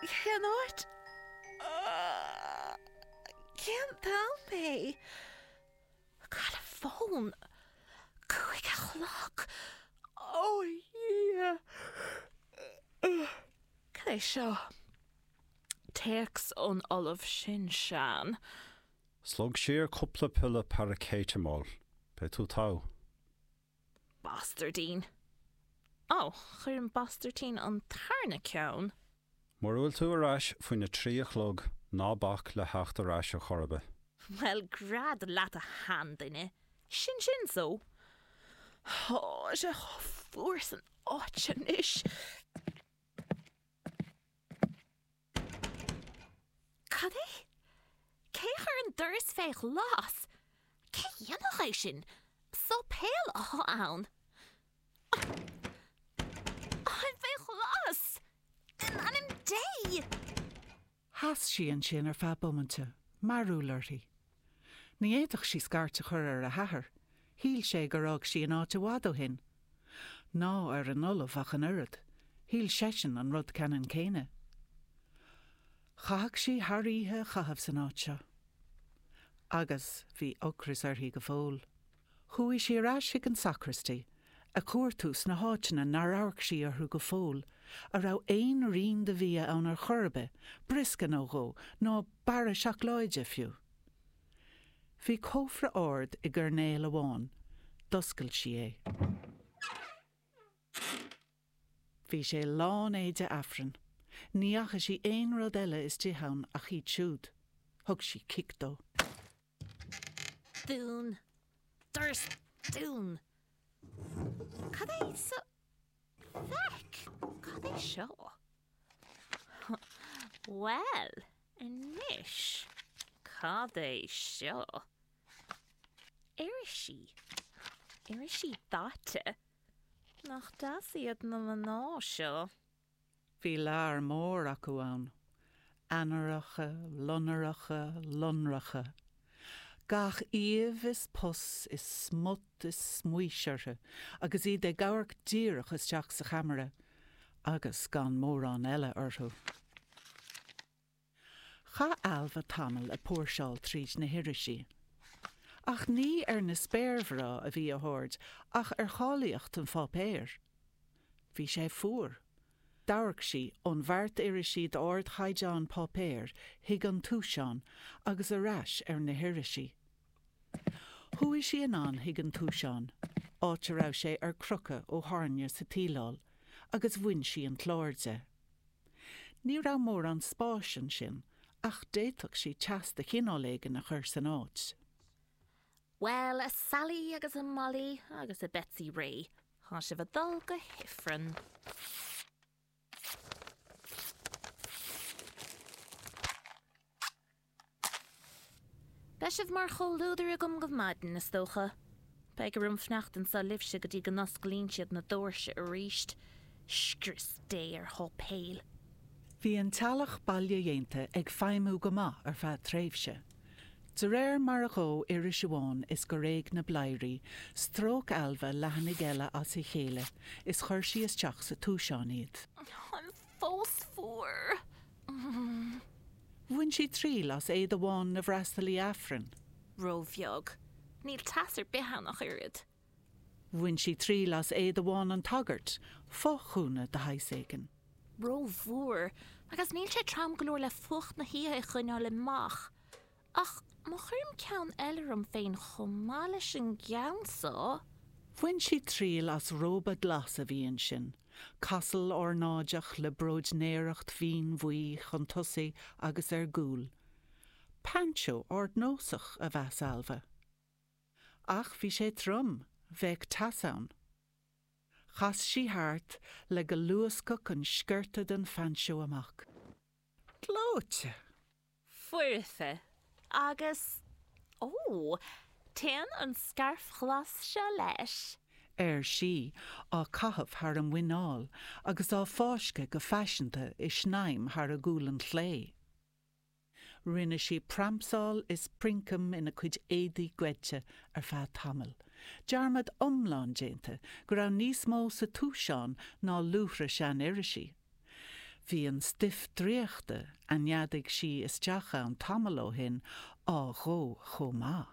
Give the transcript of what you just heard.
Cén áit? Cén t-am é? Cá bhfuil an fón? Cúig a chlog? Ó Dhia! Cad é seo? Téacs ón ollamh sin sean. Slog siar cúpla piolla paraicéiteamól. Beidh tú togha. Bastairdín. Ó, chuir an bastairdín an tarna ceann. Mura bhfuil tú ar ais faoina trí a chlog, ná bac le theacht ar ais a chor ar bith. Bhuel, gread leat a sheanduine, sin sin so. Tá sé chomh fuar san áit anois. Cad é? Cé a chuir an doras fé ghlas? Cé a dhéanfadh é sin? Séipéal atá ann. Ach é fé ghlas? In ainm Dé! Sheas sí ansin ar feadh bomainte, mearúil uirthi. Ní fhéadfadh sí scairt a chur ar a hathair, shíl sé gur fhág sí an áit i bhfad ó shin. Ná ar an ollamh ach an oiread, shíl seisean an rud ceannann céanna. Chaithfeadh sí an oíche a chaitheamh san áit seo. Agus bhí ocras uirthi go fóill. Chuaigh sí ar ais chuig an sacristy a chuartú sna háiteanna nár amharc sí orthu go fóill, a raibh aon rian de bhia ann ar chor ar bith, briosca nó dhó, nó barra seacláide fiú. Bhí cófra ard i gcoirnéal amháin. D'oscail sí é. Bhí sé lán éide Aifrinn. Ní fhaca sí aon rud eile istigh ann ach iad siúd. Thug sí cic dó. Dún. Doras dún. Cad é seo? Feic! Cad é seo? Bhuel, anois, cad é seo? Irisí. Irisí daite. Nach deas iad na mná seo? Bhí lear mór acu ann, Ainnireacha, Loinnireacha, Lonracha, gach aoibh is pus is smut is smaois orthu agus iad ag amharc díreach isteach sa cheamara agus gan mórán eile orthu. Chaith Ailbhe tamall ag póirseáil tríd na hirisí. Ach ní ar na spéirmhná a bhí a haird ach ar cháilíocht an pháipéir. Bhí sé fuar. D'amharc sí ón bheart irisí d'ardchaighdeán páipéir chuig an túiseán agus ar ais ar na hirisí. Chuaigh sí anonn chuig an túiseán, áit a raibh sé ar crochadh ó thairne sa tsíleáil, agus bhain sí an clár de. Ní raibh mórán spáis ansin ach d'fhéadfadh sí teas de chineál éigin a chur san áit. Bhuel, a Sally agus a Molly agus a Betsy Rae, tá sibh ag dul go hIfreann. Beidh sibh mar chomhluadar agam go maidin, is dócha. Beidh orm fanacht anseo libhse go dtí go n-osclaíonn siad na dóirse arís. Scrios Dé ar sháipéil. Bhí an teallach baile-dhéanta ag feidhmiú go maith ar feadh tréimhse. De réir mar a dhóigh iris amháin is gur éag na bladhairí, stróic Ailbhe leathanaigh eile as a chéile is chuir sí isteach sa túiseán iad. Ach fós fuar! Bhain sí triail as éide bhán na bhfreastalaithe Aifrinn. Ró-bheag. Níl teas ar bith ann ach oiread. Bhain sí triail as éide bhán an tsagairt, fo-ghúna de shaghas éigin. Ró-mhór. Agus níl sé trom go leor le fuacht na hoíche a choinneáil amach. Ach má chuirim ceann eile orm féin chomh maith leis an gceann so. Bhain sí triail as róba glas a bhí ansin, casal ornáideach le bróidnéireacht mhín bhuí chun tosaigh agus ar gcúl. Painseó ardnósach, a mheas Ailbhe. Ach bhí sé trom, bheadh teas ann. Chas sí thart le go luascfadh an sciorta den phainseó amach. Gleoite! foirfe agus, ó, téann an scairf ghlas seo leis. ar sí, á caitheamh thar a muineál agus á fáisceadh go faiseanta i snaidhm thar a gualann chlé. Rinne sí pramsáil is princeam ina cuid éadaí goidte ar feadh tamaill, dearmad iomlán déanta go raibh níos mó sa túiseán ná luaithre sean-irisí. Bhí an stuif draíochta a neadaigh sí isteach ann tamall ó shin á dhó chomh maith.